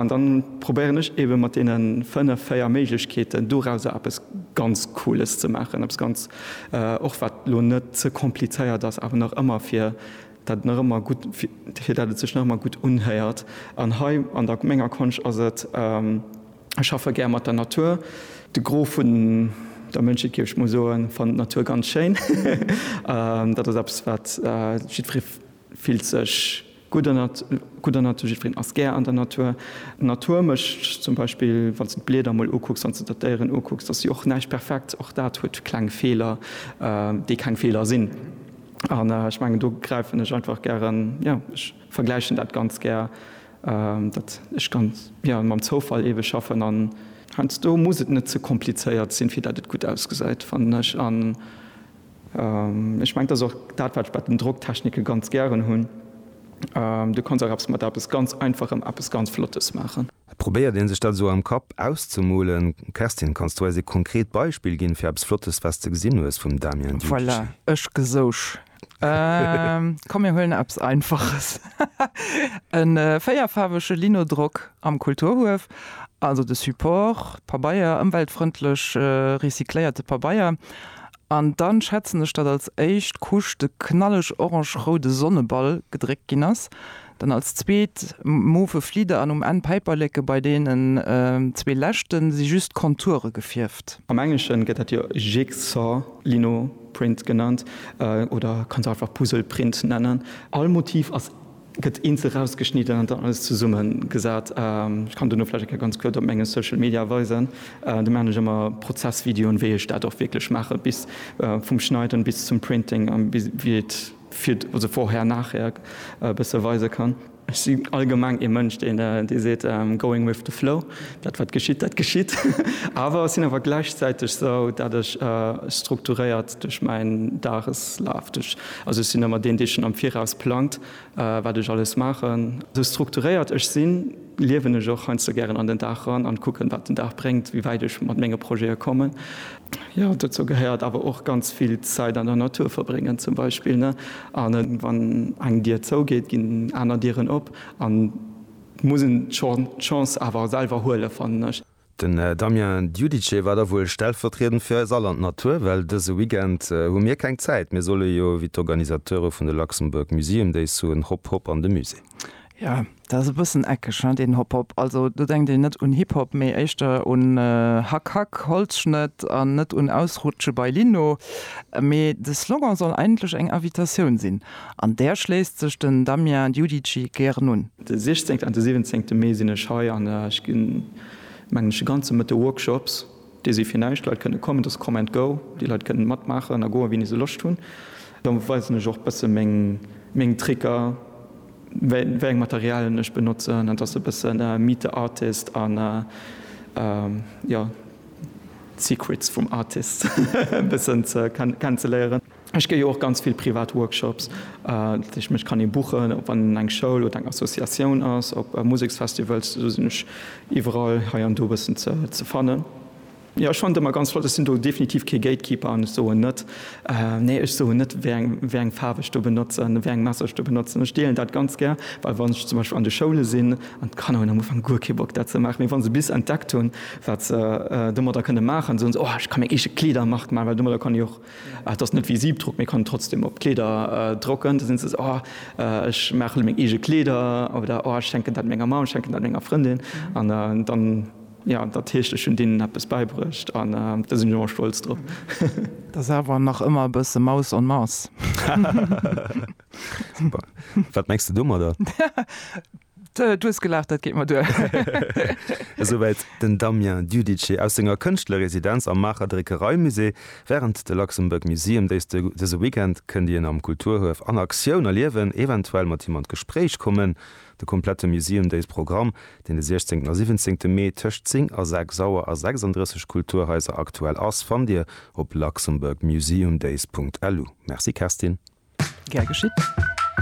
An dann probéieren ech eben mat deene 5, 4 Méiglechkeeten dorausser eppes ganz Cooles ze maachen, eppes ganz, och wat lo net ze komplizéiert ass, awer nach ëmmer fir dat nach ëmmer gutt, fir dat et sech nach ëmmer gutt unhéiert. An hei an der menger Konscht ass et, ech schaffe gär mat der Natur. De Gros vun der Mënschheet, géif ech mol soen, fannt d'Natur ganz schéin. Dat ass eppes wat jiddweree. Fillt sech gutt an der gutt an der Natur, jiddwereen ass gär an der Natur. D'Natur mécht zum Beispill, wann s de d'Blieder emol ukucks, wann s de der d'Déieren ukucks, da si och näischt perfekt, och dat huet kleng Feeler, déi keng Feeler sinn. An ech mengen, do gräifen ech einfach gären, jo, ech vergläichen dat ganz gär, datt ech ganz, jo, mam Zoufall ewech schaffen an. Heiansdo muss et net ze komplizéiert sinn, fir dat et gutt ausgesäit, fannen ech. Ech mengen, dat ass och dat, wat ech bei den Drocktechnike ganz gären hunn, Du kanns och eppes mat eppes ganz Einfachem eppes ganz Flottes maachen. Probéiert ee sech dat esou am Kapp auszemolen. Kerstin, kanns du eis ee konkret Beispill ginn, fir eppes Flottes, wat s de gesinn hues vum Damien Diukic? Voilà, ech gesouch. Komm, mir huelen eppes Einfaches, e véierfaarwege Linodrock am Kulturhuef. Also de Support, Pabeier, ëmweltfrëndlech recycléierte Pabeier. An dann schätzen ech dat als éischt Couche de knalleg orange-roude Sonneball gedréckt ginn ass, dann als zweet mauve Flieder an um Enn Päiperleke, bei deenen zwee leschte si just d'Konture gefierft. Am Englesche gëtt dat jo Jigsaw Lino Print genannt, oder kanns einfach Puzzle Print nennen. All Motiv ass Gëtt eenzel rausgeschnidden an dann alles zesumme gesat. Ech kann duerno vläicht eng Kéier ganz kuerz op menge Social Media weisen. Do maachen ech ëmmer Prozessvideoen, wéi ech dat och wierklech maache bis vum Schneiden bis zum Printing a bis wéi et fir, also vorher, nachher e bësse weise kann. Ech si allgemeng ee Mënsch, deen dee seet, going with the flow, dat wat geschitt, dat geschitt. Awer sinn awer gläichzäiteg sou, dat ech strukturéiert duerch mäin Dageslaf, duerch Also ech sinn ëmmer deen, dee schonn am Viraus plangt, wat ech alles maachen. Esou strukturéiert ech sinn, liewen ech och heiansdo gären an den Dag ran an kucken, wat den Dag bréngt, wéi wäit ech mat menge Projete kommen. Jo, dozou gehéiert awer och ganz vill Zäit an der Natur verbréngen zum Beispill, ne? An wann eng Dier zougeet, ginn aner Dieren op an muss een d'Chance awer selwer huelen, fannen ech. Den Damien Giudice war da wuel stellvertriedend fir eis all an d'Natur, well dëse Weekend hu mir keng Zäit. Mir solle jo wéi d'Organisateure vun de Luxembourg Museum Days soen, Hopp, hopp an de Musée! Jo, dat ass e bëssen eckeg, deen Hopp, hopp. Also do denkt een net un Hip Hop, mee éischter un Hack, hack, Holzschnëtt an net un Ausrutsche bei Lino. Mee de Slogan soll eigentlech eng Invitatioun sinn. An där schléisst sech den Damien Giudici gären un. De 16 an de 17 Mee sinn ech hei an ech ginn, mengen ech, e ganze Mëtte Workshops. Déi si fir näischt. Leit kënne kommen, et ass Come and Go. Déi Leit kënnen matmaachen a goen, wéini se Loscht hunn. Da weisen ech och e bësse meng Tricker, wéi eng Materialien ech benotzen. Et ass e bësse Meet the Artist a jo, d'Secrets vum Artist e bëssen kennenzeléieren. Ech gi jo och ganz vill privat Workshops, dat heescht mech kann ee buchen, ob an eng Schoul oder eng Associatioun ass, op Museksfestivals, do sinn ech iwwerall hei an do e bëssen ze fannen. Jo, ech fannen et ëmmer ganz flott, ech sinn do definitiv kee Gatekeeper an ech soen net, nee, ech soen net wéi eng Faarf ech do benotzen, wéi eng Messer ech do benotzen. Ech deelen dat ganz gär, well wann ech zum Beispill an de Schoule sinn an d'Kanner hunn am Ufank guer kee Bock dat ze maachen, mee wa se bis entdeckt hunn, wat se domadder kënne maachen, soen se, oh ech ka meng eege Kleedermark maachen, well domadder kann ech och Et ass net wéi Siebdruck, mee kann et trotzdem op d'Kleeder drocken. Da sinn se esou, oh ech maache meng eege Kleeder oder oh ech schenken dat menger Mamm, ech schenken dat menger Frëndin. An dann, jo, dat heescht, ech hunn deenen eppes bäibruecht an da sinn ech och stolz drop. Et ass awer nach ëmmer e bësse Maus en Masse. Super. Wat mengs de domadder? Du hues gelaacht, dat geet mer duer. Esouwäit den Damien Giudice aus senger Kënschtlerresidenz am Maacher Dréckereimusée. Wärend de Luxembourg Museum Days dëse Weekend kënnt een am Kulturhuef an Aktioun erliewen, eventuell mat him an d'Gespréich kommen. De komplette Museum Days Programm, deen de 16 a 17 Mee tëscht 10 a 6 Auer a 36 Kulturhaiser aktuell ass, fannt Dir op luxembourgmuseumdays.lu. Merci Kerstin. Gär geschitt.